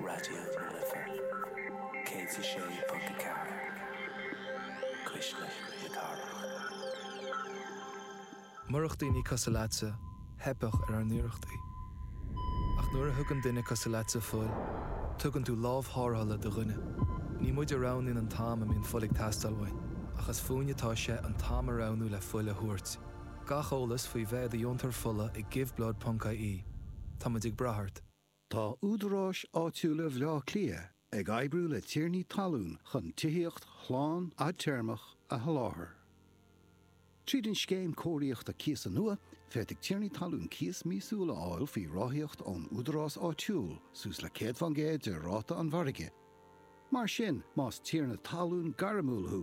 Raidió na Life 106.4, cuisle na cathrach. Murach daoine cosúil leatsa, theipfeadh ar ár n-iarrachtaí. Ach nuair a thugann duine cosúil leatsa fuil, tugann tú lámh thárrthála do dhuine. Ní muid a roghnaíonn an t-am a mbíonn fuil ag teastáil uainn, ach is fúinne atá sé an t-am a roghnú le fuil a thabhairt. Gach eolas faoi bheith i do dheontóir fola ag giveblood.ie. Táimid ag brath ort. Tá Údaráis Áitiúla Bhleá Cliath ag oibriú le tiarnaí talún chun tithíocht shlán fhadtéarmach a sholáthar. Tríd an Scéim Cóiríochta Cíosa nua, féadfaidh tiarnaí talún cíos míosúil a fháil faoi ráthaíocht ón Údarás Áitiúil, suas le 100% de ráta an mhargaidh. Mar sin, más tiarna talún gairmiúil thú,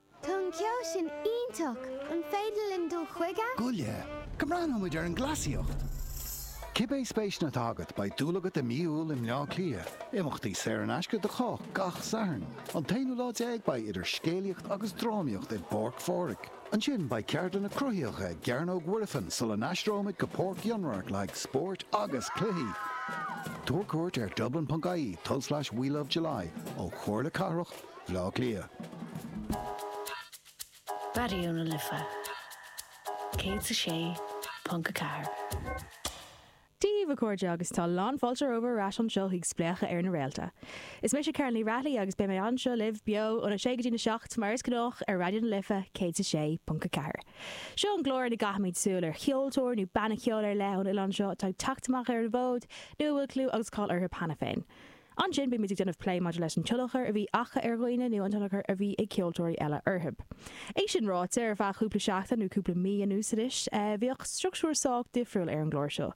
Tá an ceol sin iontach! An féidir linn dul chuige? Gabh i leith go mbreathnóidh muid ar an gcleasaíocht! Cibé spéiseanna atá agat, beidh dúil agat i mí Iúil i mBleá Cliath. Imeachtaí saor in aisce do chách gach Satharn. An t-aonú lá déag beidh idir scéalaíocht agus drámaíocht i bPáirc Phádraig. Ansin beidh ceardlanna cruthaitheacha i gCearnóg Mhuirfean sula n-aistreoimid go Páirc Fhionnradharc le haghaidh spóirt agus cluichí! Tabhair cuairt ar dublin.ie tulslais we love july ó Chomhairle Cathrach Bhleá Cliath. Raidió na Life 106.4. Dia daoibh, a chairde, agus tá lánfháilte romhaibh ar ais anseo chuig Spléachadh ar na Réalta. Is mise Carolyn Ní Raghallaigh agus beidh mé anseo libh, beo, óna sé go dtína seacht, mar is gnách, ar Raidió na Life 106.4. Seo an clár ina gcaithimid súil ar cheoltóir nó banna ceoil ar leith ón oileán seo atá ag teacht amach ar an bhfód, nó a bhfuil clú agus cáil orthu cheana féin. Ansin bíonn muid ag déanamh plé maidir leis an tionchar a bhí acu ar dhaoine nó an tionchar a bhí ag ceoltóirí eile orthu. É sin ráite, ar feadh cúpla seachtain nó cúpla mí anuas anois, bhíodh structúr sách difriúil ar an gclár seo.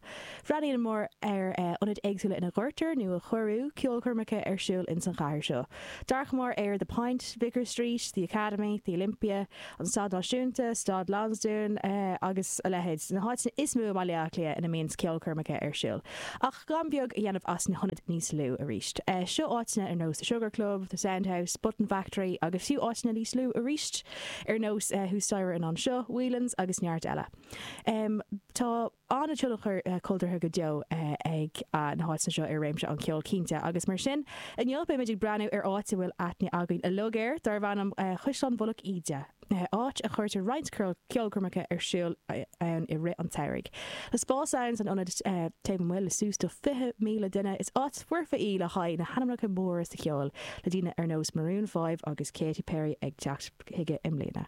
Bhreathnaíomar ar ionaid éagsúla ina gcuirtear, nó a cuireadh, ceolchoirmeacha ar siúl ins an chathair seo. D'amharcamar ar The Point, Vicar Street, The Academy, The Olympia, an Staid Náisiúnta, Staid Lansdún agus a leithéid, na háiteanna is mó i mBaile Átha Cliath ina mbíonn ceolchoirmeacha ar siúl, ach gan beag a dhéanamh as na hionaid níos lú arís. Seo áiteanna ar nós The Sugar Club, The Sound House, Button Factory agus fiú áiteanna níos lú arís ar nós thuas staighre in Anseo, Whelan's agus neart eile. Tá. an-tionchar cultúrtha go deo ag na háiteanna seo ar réimse an cheoil, cinnte, agus mar sin, inniu beidh muid ag breathnú ar áit a bhfuil aithne againn uilig air, darb ainm Caisleán Mhullach Íde, áit a chuirtear roinnt ceolchoirmeacha ar siúl ann i rith an tsamhraidh. Tá spás ann san ionad taobh amuigh le suas do 20,000 duine. Is áit foirfe í le haghaidh na hainmneacha móra sa cheol, le daoine ar nós Maroon Five agus Katy Perry ag teacht chuige i mbliana.